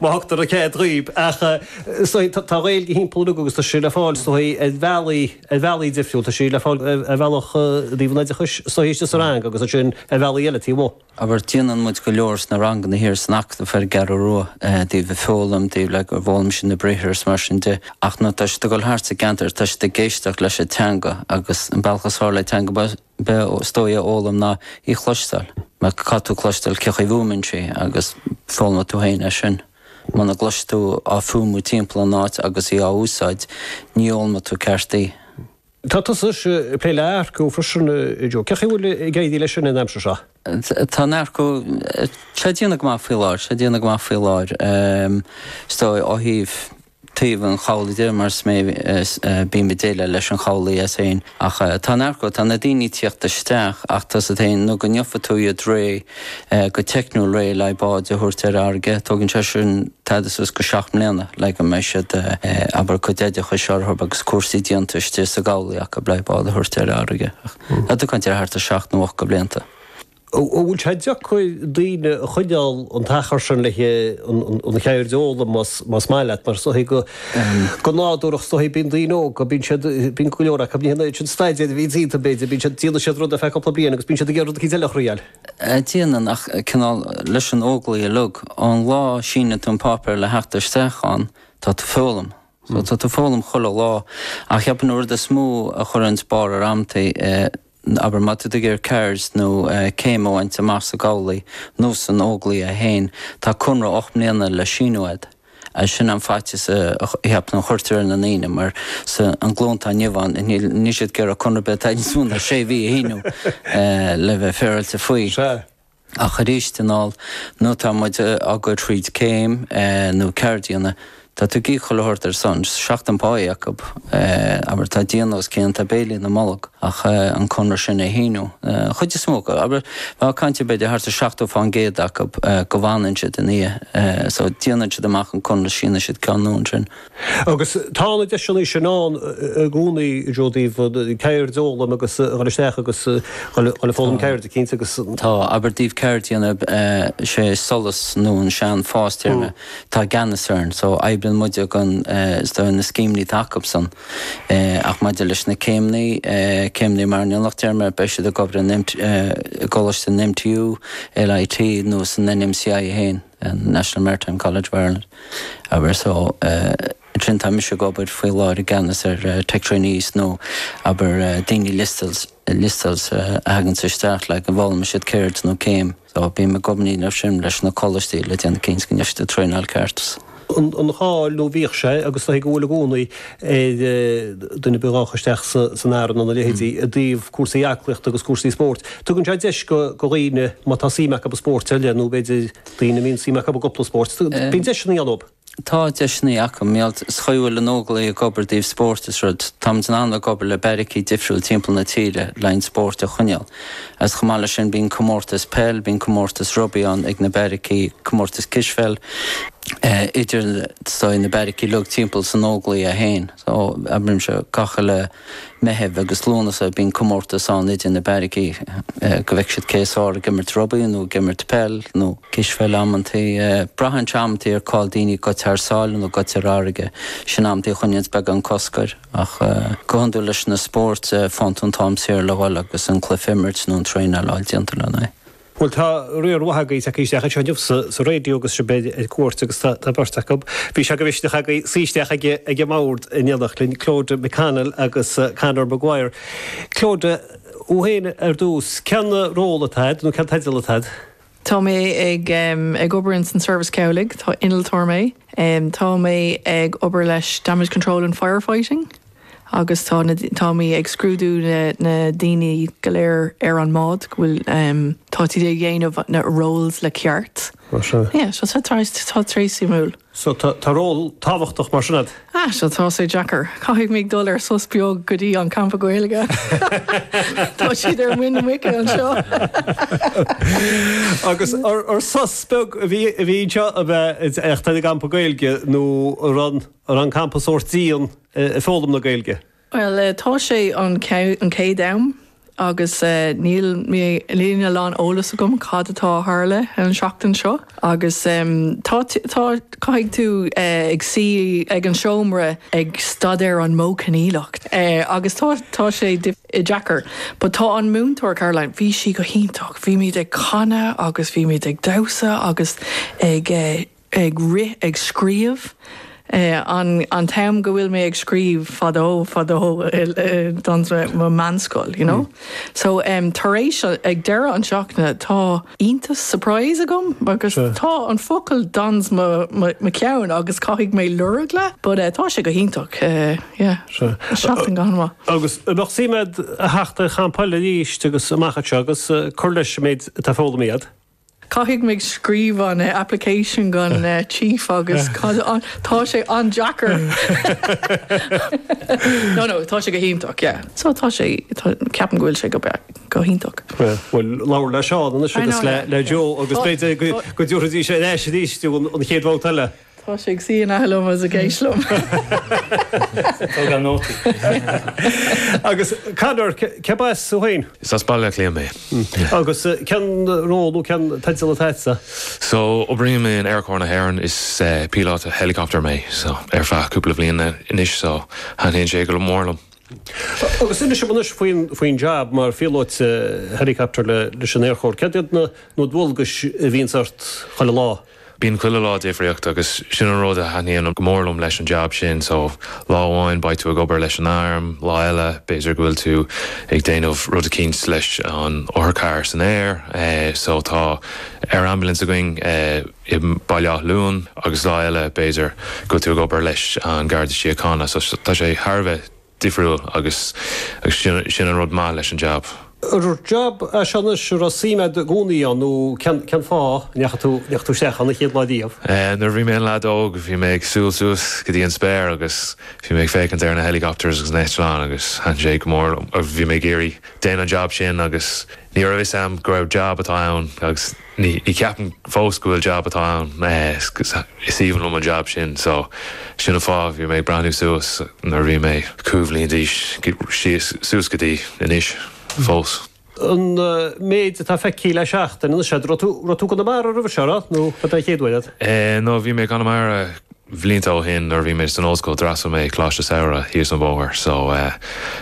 má thugtar an cead dhíob ach tá an Ghaeilge thimpeall uilig agus tá sí le fáil ar bhealaí, ar bhealaí difriúil, tá sí le fáil ar bhealach i dtaobh an oideachais, sa rang agus ansin ar bhealaí eile taobh amuigh. abair déanann muid go leor sna ranganna thiar san Acadamh ar an gCeathrú Rua i dtaobh an foghlaim, i dtaobh le go bhfoghlaimíonn siad na briathra agus mar sin de ach nuair atá siad ag dul thart sa gceantar tá siad ag éisteacht leis an teanga agus an bealach is fearr le teanga bheith is dóigh a fhoghlaim ná í chloisteáil. Má tá tú ag cloisteáil cén chaoi a bhfuaimnítear í agus foghlaimíonn tú féin é sin. Muna gcloiseann tú á fuaimniú timpeall an áit agus í á úsáid, ní fhoghlaimíonn tú ceart í. Tá tusa ag plé le earcú freisin a Joe. Cén chaoi a bhfuil ag éirí leis sin an aimsir seo? Tá an t-earcú, sé déanamh go maith faoi láthair, sé déanamh go maith faoi láthair is dóigh ó thaobh. thaobh an chabhlaigh de mar is mé bím ag déileáil leis an gcabhlach as féin. Ach tá an t-earcú, tá na daoine ag tíocht isteach ach tú a bheith in ann, nó go ndéanfaidh tú iad réidh go teicniúil, réidh le haghaidh báid a thabhairt ar fharraige, tógann sé sin tada suas go seacht mbliana le go mbeidh siad, abair, a gcuid oideachais orthu agus cúrsaí déanta istigh sa gcabhlach acu le haghaidh bád a thabhairt ar fharraige. Tá tú ag caint ar thart ar seacht nó ocht de bhlianta. An bhfuil sé deacair daoine a choinneáil an t-achar sin le an cheird a fhoghlaim más maith leat? Mar go nádúrach is dóigh bíonn daoine óga, bíonn siad, bíonn go leor acu, ní hé an staidéar a bhíonn déanta b'fhéidir, bíonn siad, déanann siad rud ar feadh cúpla bliain agus bíonn siad ag iarraidh rud éicint eile a thriail. Déanann ach cineál leis na hÓglaigh uilig, ón lá a síneann tú an páipéar le theacht isteach ann tá tú ag foghlaim. Tá tú ag foghlaim chuile lá. Ach cheapfainn an rud is mó a chuireanns barr ar an taobh, abair, má tá tú ag iarraidh ceard nó céim a bhaint amach sa gcabhlach nó sna hÓglaigh féin, tá conradh ocht mbliana le síniú agat. Sin an faitíos a cheapaim a chuirtear ar na daoine mar sa an ghlúin atá inniu ann níl siad ag iarraidh conradh ar bith atá níos mó ná sé mhí a shíniú le bheith féaráilte faoi. Sea. Ach arís ar ndóigh, nuair atá muid á gcur thríd céim nó ceard a dhéanamh, tá tú ag goil ag tabhairt ar son, seachtain pá acub, abair, tá díon os a gcionn, tá béilí ina mbolg, ach an conradh sin a shíniú, chuid is mó acu, abair, bheadh caint ar b'fhéidir thart ar 70% acu go bhfanann siad ina dhiaidh, so, déanann siad amach an conradh, síneann siad ceann nua ansin. Agus tá na deiseanna sin ann i gcónaí i dtaobh ceird a fhoghlaim agus a dhul isteach agus a dhul ag foghlaim ceirde, cinnte, agus. Tá, abair i dtaobh ceird a dhéanamh, sé SOLAS nó an sean-FÁS téarma atá i gceannas air, so oibríonn muid as na scéimeanna atá acu san. Ach maidir leis na céimeanna, céim mar innealtóireacht téarma, beidh siad ag obair in i gColáiste an MTU, LIT nó san NMCI féin. an National Maritime College of Ireland, abair. So, ansin tá mise ag obair faoi láthair i gceannas ar Tech Trainees nó, abair, daoine liostáilte, liostáilte a thaganns isteach le go bhfoghlaimeoidh siad ceird nó céim. So, bím i gcónaí ag plé leis sin leis na coláistí le déanamh cinnte go ndéanann siad traenáil ceart. So. an an cháil nó bhíodh sé agus tá sé go bhfuil i gcónaí ar dhuine a bheadh isteach san, san arm nó a leithéidí i dtaobh cúrsaí aclaíochta agus cúrsaí spóirt. Tugann sé deis go dhaoine má tá suim acu i spórt eile nó b'fhéidir daoine a mbíonn suim acu i gcúpla spórt. Bíonn deiseanna ann dóibh. Tá deiseanna acu. Is é an chaoi go bhfuil na hÓglaigh ag obair i dtaobh spórt is rud. Táimid in ann ag obair le beairicí difriúil timpeall na tíre le haghaidh an spóirt a choinneáil. Agus chomh maith leis sin bíonn comórtais peil, bíonn comórtais rugbaí ann ag na beairicí, comórtais cispheil idir na beairicí, beairicí uilig timpeall san Óglaigh é féin. So, abraimis, gach uile Meitheamh agus Lúnasa bíonn comórtas ann idir na beairicí go bhfeicfidh siad cé is fearr ag imirt rugbaí nó ag imirt peil nó cispheil amantaí. Braitheann sé amantaí ar cá bhfuil daoine gaibhte thar sáile nó gaibhte ar farraige. Sin amantaí a choinníonns beagán cosc air. Ach go hiondúil leis na spóirt faigheann tú an t-am saor le dhul agus an cluiche a imirt nó an traenáil a fháil déanta lena aghaidh. Bhuel tá riar mhaith agaibh tagtha isteach anseo inniu sa raidió agus sibh ag déanamh cuairt agus tá beirt agaibh, bhí sé de mhisneach agaibh suí isteach ag an mbord in éineacht linn, Clodagh McConnell agus Conor Maguire. Clodagh, thú fhéin ar dtús, cén ról atá agat nó cén teideal atá agat? Tá mé ag obair ins an Seirbhís Cabhlaigh, tá innealtóir mé. Tá mé ag obair leis Damage Control and Fire Fighting. agus tá na, táimid ag scrúdú na, na daoine go léir ar an mbád go bhfuil, tá siad ag déanamh na roles le ceart. Mar sin. Yeah, so tá sé très, tá sé très suimiúil. So tá, tá ról tábhachtach mar sin a'd? Ah, so tá sé deacair. Caithfidh mé dul ar sos beag go dtí an Campa Gaeilge. tá siad ar muin na muice anseo. Agus ar, ar sos beag a bhí ann, a bhí anseo a bheith ag an Campa Gaeilge nó an? Ar campa sórt dian i foghlaim na Gaeilge? Bhuel tá sé an chéad am agus níl níl a lán eolas agam cad atá a tharla an tseachtain seo agus tá tá caithfidh tú ag suí ag an seomra ag staidéar an Modh Coinníollach agus tá tá sé deacair but tá an múinteoir Caroline bhí sí go hiontach bhíomid ag canadh agus bhíomid ag damhsa agus ag ag rith ag scríobh, an t-am go bhfuil mé ag scríobh fadó fadó dans mo mheánscoil you know. So tar éis ag deireadh an tseachtaine tá iontas surprise agam agus tá an focal dans mo mo ceann agus caithfidh mé lorg le but tá sé go hiontach yeah seachtain go han-mhaith. Agus bheadh suim a'd a theacht ar champa eile arís amach anseo agus cur leis an méid atá foghlamtha a'd? Caithfidh mé scríobh an application don chief agus cad an, tá sé an-deacair. No no, tá sé go hiontach yeah. So tá sé, ceapaim go bhfuil sé go breá, go hiontach. Bhuel, labhair le Seán anois agus le Joe agus b'fhéidir go dtabharfaidís ar ais arís an chéad bhabhta eile. Tá sé ag suí in aice liom. Ag tógáil nótaí. Agus Conor, cé as tú féin? Is as Baile Átha Cliath mé. Agus cén ról nó cén teideal atá agatsa? So, oibrím in Aerchór na hÉireann. Is píolóta helicopter mé. So, ar feadh cúpla bliain anois. So, taitníonn sé go mór liom. Agus inis liom anois faoin jab mar phíolóta helicopter leis an Aerchór. Cad iad na dualgais a bhíonns ort chuile lá? Bíonn chuile lá difriúil agus sin an rud a thaitníonn go mór liom leis an jab sin so lá amháin beidh tú ag obair leis an arm, lá eile b'fhéidir go bhfuil tú ag déanamh rud eicínt leis an otharcharr san aer so tá air ambulance againn i mBaile Átha Luain agus lá eile b'fhéidir go bhfuil tú ag obair leis an Garda Síochána so tá sé thar a bheith difriúil agus sin an rud maith leis an jab. An jab é seo anois a raibh suim agat i gcónaí ann nó cén fáth a ndeachaigh tú isteach ann an chéad lá riamh? Nuair a bhí mé i mo leaid óg bhí mé ag breathnú suas go dtí an spéir agus bhí mé ag féachaint ar na helicopters agus na heitleáin agus thaitin sé go mór liom. Bhí mé ag iarraidh déanamh an jab sin agus ní raibh fhios a'm gur jab atá ann agus. Ní cheapaim fós go bhfuil jab atá ann. Is aoibhinn liom an jab sin so sin an fáth bhí mé ag breathnú suas nuair a bhí mé cúig bhliain d'aois síos suas go dtí anois fós. An méid atá feicthe le seachtain anois, raibh tú i gConamara roimhe seo, raibh? Nó ba é an chéad uair agat? No, bhí mé i gConamara blianta ó shin nuair a bhí mé san ollscoil d'fhreastail mé ar choláiste Samhraidh thíos an bóthar so tá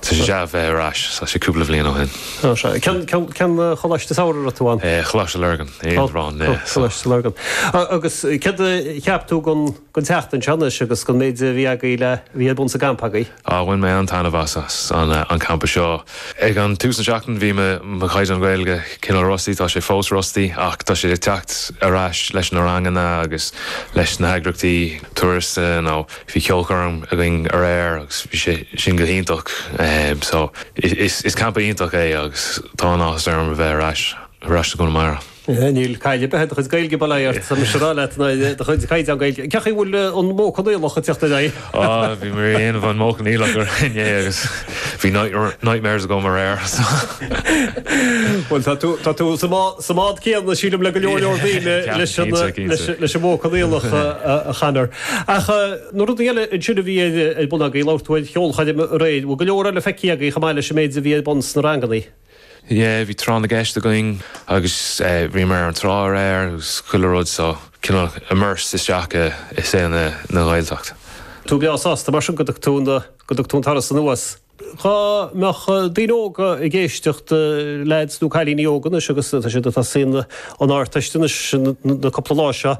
sé deas bheith ar ais tá sé cúpla bliain ó shin. Ó sea. Cén cén cén coláiste Samhraidh a raibh tú ann? Eh Coláiste Lurgan i Indreabhán eh so. Coláiste Lurgan. Agus céard a cheap tú gon gon tseachtain seo anois agus gon méid a bhí agaibh le bhí ar bun sa gcampa agaibh? Bhain mé an-taitneamh as an gcampa seo. Ag tús na seachtaine bhí mo chaighdeán Gaeilge cineál rusty, tá sé fós rusty ach tá sé ag teacht ar ais leis na ranganna agus leis na heagraíochtaí turas nó bhí ceolchoirm againn aréir agus bhí sé sin go hiontach so is campa iontach é agus tá an-áthas orm a bheith ar ais sa gConamara. Níl caill ar bith ar do chuid Gaeilge, bail ó Dhia ort, tá mise ag rá leat ná do chaighdeán Gaeilge. Cé chaoi a bhfuil an Modh Coinníollach ag teacht ar aghaidh? Á, bhí mé ag déanamh an Modh Coinníollach inné agus bhí nightmares agam aréir, so. Bhuel, tá tú, tá tú sa mbád céanna, sílim, le go leor, leor daoine leis an, leis, leis an Modh Coinníollach, a Chonor. Ach na rudaí eile ansin a bhí ar bun agaibh, labhair tú ar cheolchoirm aréir, bhfuil go leor eile feicthe agaibh chomh maith leis an méid a bhí ar bun sna ranganna? Yeah, bhí tráth na gceist againn agus bhíomar ar an trá aréir agus chuile rud so cineál immersed isteach i saol na Gaeltacht. tú breá sásta mar sin go dtug tú na go dtug tú an turas anuas. dhá mbeadh daoine óga ag éisteacht leaids nó cailíní óga anois agus tá siad atá ag suí na hArdteist anois na cúpla lá seo.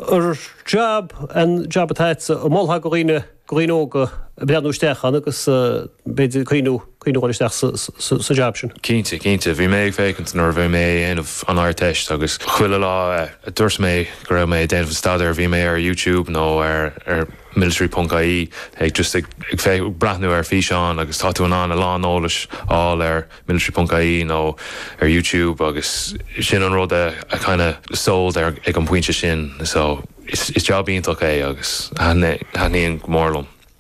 An jab an jab atá agatsa a mholfá go dhaoine? go dhaoine óga breathnú isteach ann agus b'fhéidir cinneadh a dhul isteach sa jab sin. Cinnte, cinnte. Bhí mé ag féachaint nuair a bhí mé ag déanamh an Ardteist agus chuile lá a dúirt mé go raibh mé ag déanamh an staidéir bhí mé ar YouTube nó ar military ponc ie just ag breathnú ar físeáin agus tá tú in ann a lán eolais a fháil ar military ponc ie nó ar YouTube agus sin an rud a kinda sold ag an pointe sin so is jab iontach é agus taitníonn go mór liom.